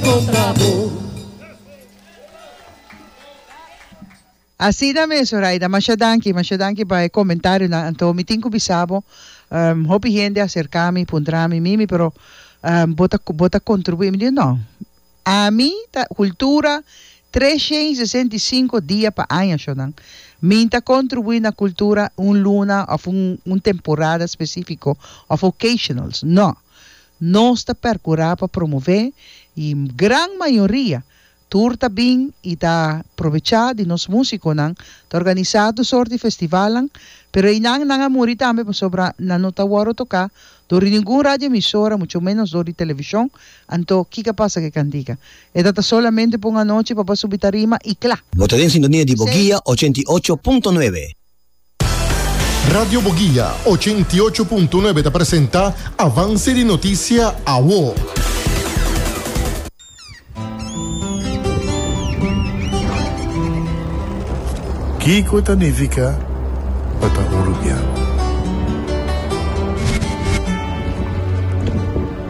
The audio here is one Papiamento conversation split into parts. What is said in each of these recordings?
contra bo. Asina mes Zoraida, masha danki, masha danki pa e comentarionan. Anto mi tin cu bisa bo, hopi hende a cerca mi, puntra mi, Mimi, pero bo ta bo ta contribui? Mi di no, ami ta cultura treshen y sesenta y cinco dia pa aña sho nan, mi ta contribui na cultura un luna of un temporada specifico of occasionals, no. Nos ta percura pa promove y gran mayoria tur ta bin y ta probecha di nos musiconan ta organisa tur sort di festivalnan pero eynan nan a muri tambe pasobra nan no ta worde toca dor di ningun radioemisora mucho menos dor di television anto kica pasa cu e cantica e ta ta solamente pa un anochi papá subi tarima y cla. Bo ta den sintonia di Boguia ochenta i ocho punto nuebe. Radio Boguia, ochenta i ocho punto nuebe ta presenta Avance di Noticia Awo. Kiko ta nifica pa ta urubiano?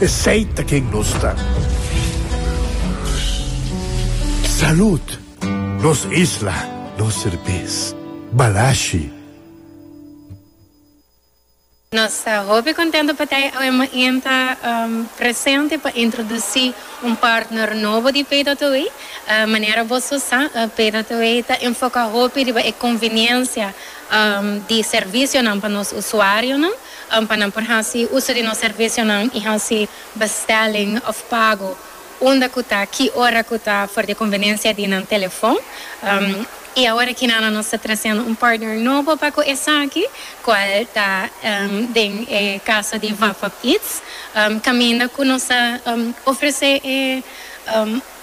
Esey ta ken nos ta. Salud! Nos isla, nos serbes. Balashi. Nos ta hopi contento pa Tei AWMN ta presente pa introduci un partner nobo di Paydataway. Manera bo su sa, Paydataway ta enfoca hopi riba e conveniencia di servicionan pa nos usuarionan. An pa nan por hasi uso di nos servisionan i hasi bestelling of pago unda cu ta, ki ora cu ta for di conveniencia di nan telefon. I awor aki na nos ta treciendo un partner nobo pa cu esaki, cual ta den e caso di Vapap Eats, caminda cu nos ta ofrece e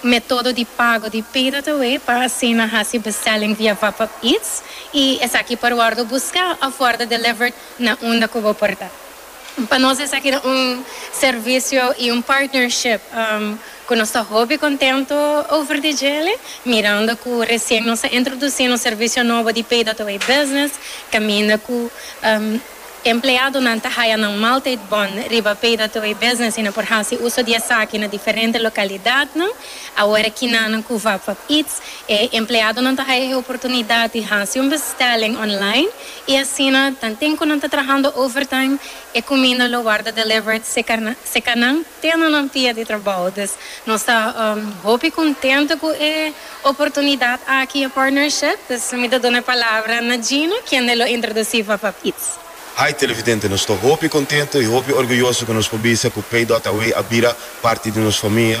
metodo di pago di pdtaway pa asina hasi bestelling via Vapap Eats i esaki por wordo busca of wordo delivered na unda cu bo por ta. Pa nos esaki ta un servicio y un partnership cu nos ta hopi contento over di djele, mirando cu recien nos a introduci nos servicio nobo di Pay That Away Business, caminda cu empleadonan ta haya nan maaltijd bon riba Pay That Away Business y nan por haci uso di esaki na diferente localidadnan. Awor kinanan cu Vapvap Eats, e empleadonan ta haya e oportunidad di haci un bestelling online, I asina ta tin cu nan ta trahando overtime, e cuminda lo warda delivered seca nan te na nan pia di trabao. Dus nos ta hopi contento cu e oportunidad aki, e partnership. Dus mi ta duna e palabra na Gino, kende lo introduci Fafaf Eats. Hi Televidente, nos ta hopi contento y hopi orguyoso cu nos por bisa cu Paidot Away a bira parti di nos famia.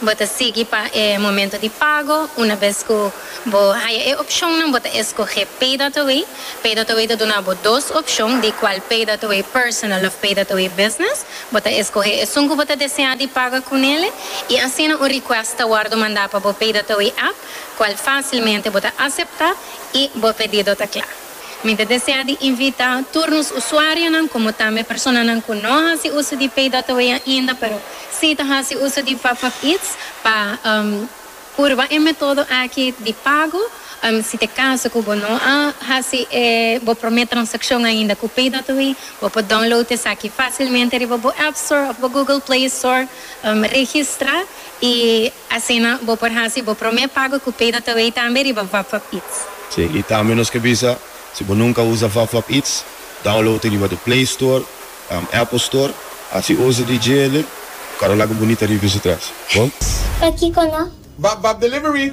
Bo ta sigui pa e momento di pago. Una bes cu bo haya e opcionnan bo ta escoge Pay That Away. Pay That Away ta duna bo dos opcion, di cual Pay That Away Personal of Pay That Away Business. Bo ta escoge esun cu bo ta desea di paga cu nele y asina un request ta wordo manda pa bo Pay That Away app, cual facilmente bo ta acepta y bo pedido ta cla. Mi ta desea di invita tur nos usuarionan como tambe personanan cu no a haci uso di Pay Dot Away ainda pero si ta haci uso di Popup Eats pa purba e metodo aki di pago. Si ta e caso cu bo no a haci e bo prome transaccion ainda cu Pay Dot Away, bo por download esaki facilmente riba bo App Store of bo Google Play Store, registra. I asina bo por hasi bo promé pago ku PayDataWay tambe riba VapVapIts. Sí, i tambe nos ke bisa, si bo nunka usa VapVapIts, download e riba di Play Store òf Apple Store, hasi uso di djele, kòrda laga bunita rivista tras. Bon. Pakiko no? VapVapDelivery.